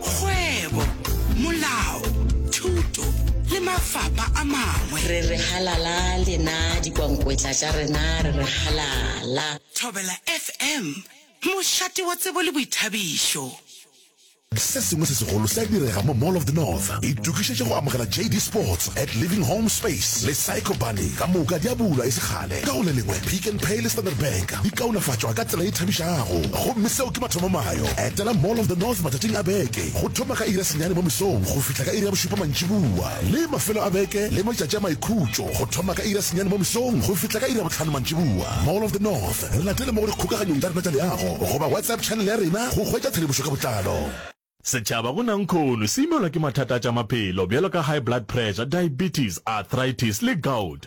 kgwebo, molao, thuto le mafapa a mangwe. Re re halala lena dikwankwetla tša rena re re halala. Thobela FM, mošate wa tsebo le boithabišo. Se sengwe se segolo se a direga mo Mall of the North. Itokišetše go amogela JD Sports at Living Home Space le Psycho Bunny. Ka moka di a bulwa e se kgale. Ka go le lengwe, Pick n Pay le Standard Bank di kaonafatšwa ka tsela e thabišago. Gomme seo ke mathomo. yo. Etela Mall of the North matšatšing a beke go thoma ka iri ya senyane mo mesong go fihla ka iri ya bošupa mantšiboa, le mafelo a beke le matšatši a maikhutšo go thoma ka iri ya senyane mo mesong go fihla ka iri ya bohlano mantšiboa. Mall of the North. Re latele mo go dikgokaganyong tša rena tša leago goba WhatsApp channel ya rena go hwetša tshedimošo ka botlalo. Setšhaba go Nankhono se imelwa ke mathata a tša maphelo bjalo ka high blood pressure, diabetes, arthritis le gout.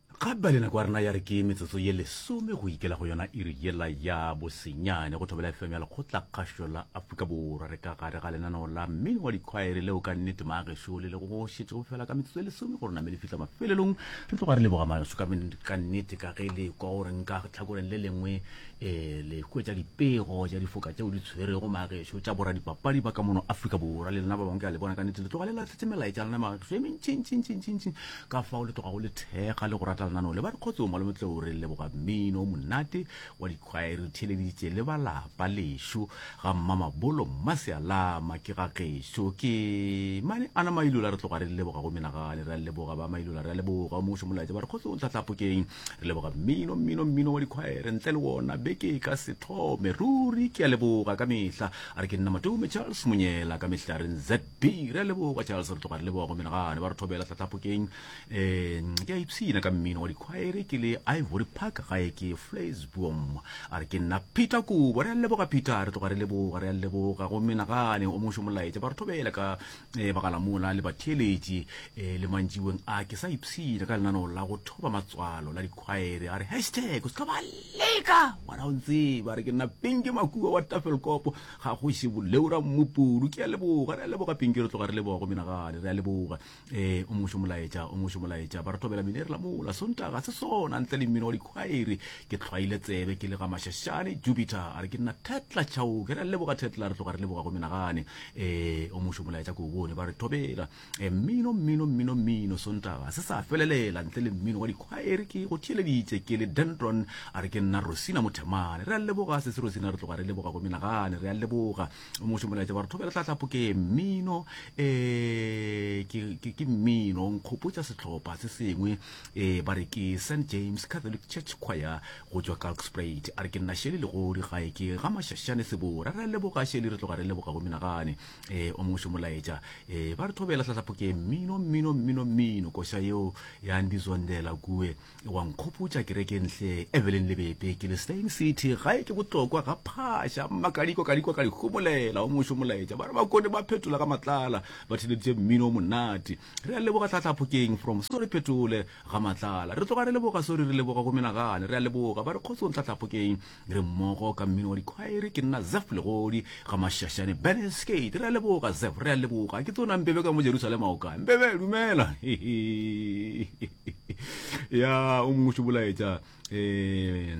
Gape ba le nako ya rena ya re ke metsotso ye lesome go ikela go yona iri yela ya bosenyane go thobela FM ya lekgotlakgašo la Afrika Borwa re ka gare ga lenaneo la mmino wa dikhwaere leo ka nnete maagešo le le go šetše go fela ka metsotso ye lesome gore name le fihla mafelelong re tloga re leboga maso ka nnete ka ge le kwa gore nka tlhakoreng le lengwe um le hwetša dipego tša difoka tšeo di tshwerego maagešo tša bora dipapadi ba ka mono Afrika Borwa le lena ba bangwe ke a le bona ka nnete le tloga le latlhetse melaetša lena maagešo e mentšintšintšintšintšintši ka fao le tlogago le thekga le go rata lenaneo le ba dikgotsong malome tlou re leboga mmino o monate wa dikgwaere theleditše le ba lapa lešo ga mmamabolo mmasealama ke ga gešo ke mane ana mailola re tloga re leboga go menagane re a leboga ba mailola re a leboga o mošo molaetsa ba dikgotsong tlatlapokeng re leboga mmino mmino mmino wa dikgwaere ntle le wona beke ka sethome ruri ke a leboga ka mehla a re ke nna matome charles monyela ka mehlaren z Phiri a leboga Charles re tloga re leboga go menagane ba re thobela tlatlapokeng um ke a ipshina ka mmino wa dikhwaere ke le ivory park gae ke flasbom a re ke nna peter kobo re a leboga peter re tloga re leboga re a leboga go menagane o mošo molaetša ba re thobela ka um bagalamola le batheeletši um le mantšiweng a ke sa ipshina ka lenaneo la go thoba matswalo la dikhwaere a re hashtag o se ka ba leka wena o ntseba re ke nna pinke makua wa tafelkopo Ga go še boleu ra mmupudu ke a leboga re a leboga pinki re tloga re leboga go menagale re a leboga eh o mošo molaetša o mošo molaetša ba re thobela mine re la mola sontaga se sona ntle le mmino wa dikhwaere ke tlhwaile tsebe ke le ga mashashane jupiter a re ke nna tetla tšhaoke re a leboga tetla re tloga re leboga go menagane eh o mošo molaetša ko o bone ba re thobela E, mmino, mmino, mmino, mmino, Sontaga ga se sa felelela ntle le mmino wa dikhwaere. Ke go theeleditše ke le Dendron, a re ke nna Rosina Mothemane. Re a leboga sese Rosina, re tloga re leboga go menagane, re a leboga. O mongwe šomolaetša ba re thobela tlhatlhapo ke mmino, e, ke, ke, ke mmino, nkgopotša sehlopha se sengwe, e, ba re ke St James Catholic Church Choir go tšwa Kalkspruit. A re ke nna Sheli Legodi, gae ke ga Mashashane Sebora. Re a leboga Sheli, re tloga re leboga go menagane. e o mongwe molaetša e ba re thobela tlatlapho ke mmino mmino mmino mmino koša yeo ya ndi zondela kue e wa nkgopotša kereke ntle evelyn lebepe ke le stain city gae ke botlokwa ga phasha mmakadiko kadiko ka dihomolela o mongwe molaetša ba re ba kone ba phetola ka matlala ba theleditše mmino o monate re a leboga tlatlapho keng from so re phetole ga matlala re tloga re leboga sori re leboga go menagane re a leboga ba re kgotsong tlatlapho keng re mmogo ka mmino wa dikhwaere ke nna zef legodi ga mašašane ben skate re a leboga zef re a leboga ke tsona mpebe ka mo jerusalema o kae mpebe dumela ya o mongwe šobolaetša um eh,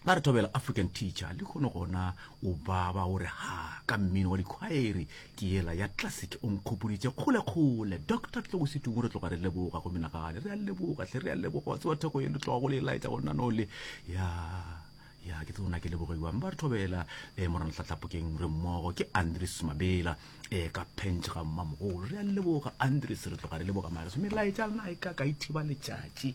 ba re thobela african teacher le kgone gona o baba o re ha ka mmino wa dikhwaere ke yela ya classic o nkgopoditše kgolekgole doctor tle go setungo re tloga re leboga go menagane re a leboga tle re a leboga wa tsewa theko ye le tloga go le e laetsa go nnano le ya ya ke tsona ke lebogeiwang ba re thobela um eh, morana tlatlapokeng re mmogo ke andres mabela um ka pentšhe ga mmamogolo re a leboga andres re tloga re leboga mareso melaetsa lona e ka ka ithiba letšatši